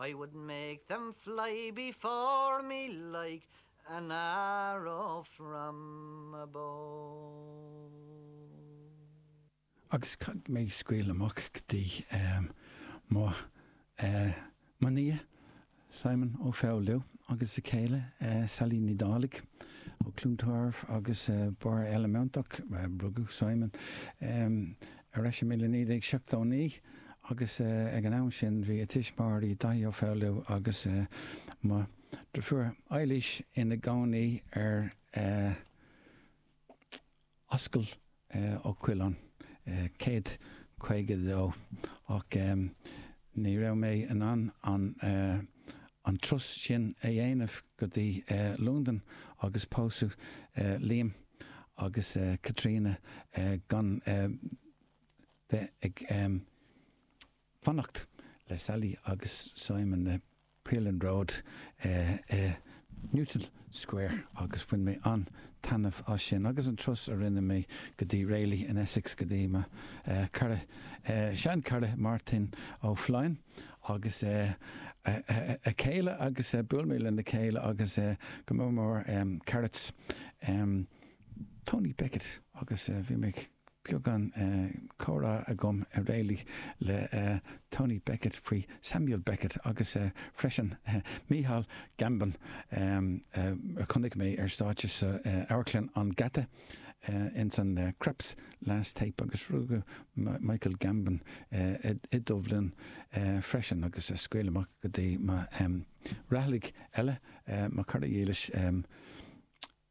I would make them fly before me like an arrow from a bow. Agus caithfidh mé scaoileadh amach go dtí mo mo nia Simon Ó Foghlú agus a céile Sally Ní Dhálaigh ó Chluain Tarbh agus Barr Eile Meanntach. Rugadh Simon. ar ais i míle 1979 agus ag an am sin bhí a thuismitheoirí, Daithí Ó Foghlú agus mo dhrifiúr Eilís ina gcónaí ar Ascaill Uí Choileáin 152 ach Ní raibh mé in ann an an turas sin a dhéanamh go dtí Londain agus pósadh Liam agus Caitríona gan bheith ag fanacht le Sally agus Simon. Ealing Road i Newton Square agus bhain mé an-taitneamh as sin agus an turas a rinne mé go dtí Rayleigh in Essex go dtí mo chara, seanchara Máirtín Ó Floinn agus a chéile agus bhuail mé lena chéile agus go mór mór a charaid Tony Beckett agus bhí mé ag. beagán comhrá agam i Rayleigh le Tony Beckett faoi Samuel Beckett agus freisin Michael Gambon a chonaic mé ar stáitse sa amharclann an Gheata ins an Krapp's Last Tape agus rugadh Michael Gambon i Dubhlinn freisin agus scaoil amach go dtí mo Raghallaigh eile, mo chara dhílis.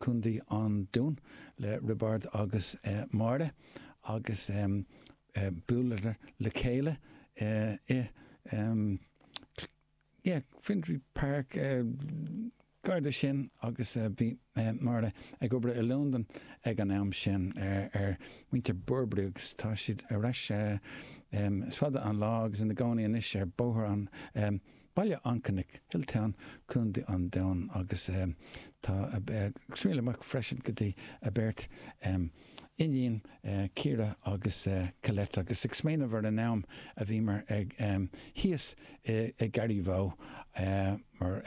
Contae an Dúin, le Roibeárd agus Máire agus buaileadar le chéile i bhFinsbury Park gar do sin agus bhí Máire ag obair i Londain ag an am sin ar mhuintir Burberry agus tá siad ar ais, is fada an lá, agus ina gcónaí anois ar Bhóthar an. Baile an Chnoic, Hilltown, Co. an Dúin agus tá scaoil amach freisin go dtí a mbeirt iníon, Ciara agus Colette, agus ag smaoineamh ar an am a bhíomar thíos i Garraí Bhoth mar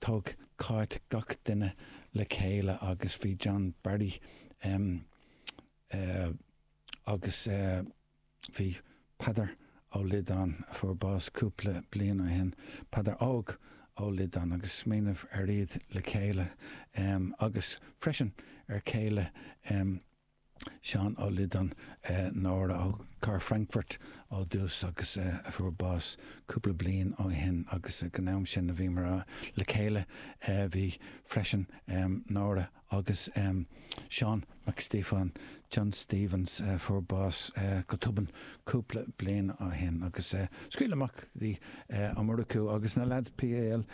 thug Cáit gach duine le chéile agus bhí John Barry agus. Bhí Peadar Ó Liodáin, a fuair bás cúpla bliain ó shin, Peadar Óg Ó Liodáin, ag smaoineamh ar iad le chéile, agus freisin ar chéile Sheáin Uí Liodáin, Nóra ó Charr Frankfurt ó dtús agus a fuair bás cúpla bliain ó shin, agus ag an am sin a bhíomar le chéile bhí freisin Nóra. agus Seán Mac Stíofáin, John Stephens, a fuair bás go tobann cúpla bliain ó shin agus scaoil amach di Omaruku agus na leaids PAL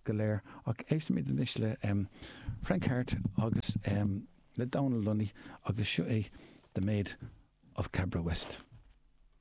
go léir. Ach éistimid anois le Frank Harte agus le Donal Lunny agus seo é The Maid of Cabra West.